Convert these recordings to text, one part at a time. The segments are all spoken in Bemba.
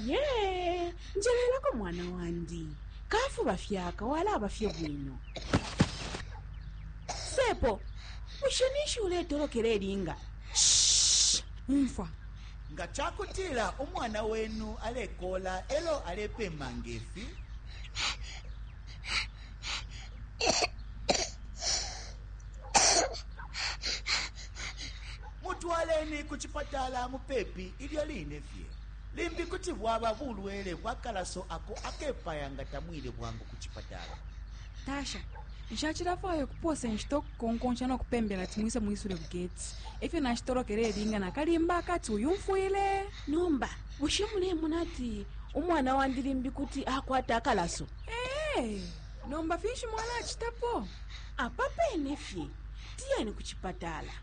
ye njelelako mwana wandi kafuba fyaka walaba fye bwino sepo bushe ninshi uletolokela elinga umfwa nga ca kutila umwana wenu alekola elo alepema ngefi Mutwaleni ku cipatala mupepi ilyo line fye. Limbi kuti bwaba bulwele bwa kalaso ako akepaya nga tamwile bwangu ku cipatala. Tasha, nshacilafwaya ukupoosa inshita ukukonkonsha no kupembela ati mwise mwisule ku geti. E fyo nashitolokele ilinga na kalimba akati uyumfwile. Nomba bushe mulemona ati umwana wandi limbi kuti akwata akalaso? Ee, nomba finshi mwalacitapo? apa pene fye tiyeni ku cipatala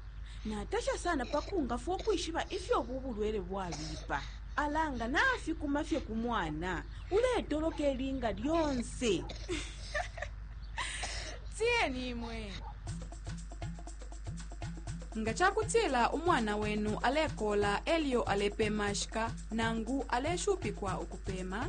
natasha sana pa kungafwa ukwishiba ifyo ubu bulwele bwabipa ala nga nafikuma fye ku mwana uletoloka ilinga lyonse tiyeni imwe nga ca kutila umwana wenu alekola elyo alepemashika nangu aleshupikwa ukupema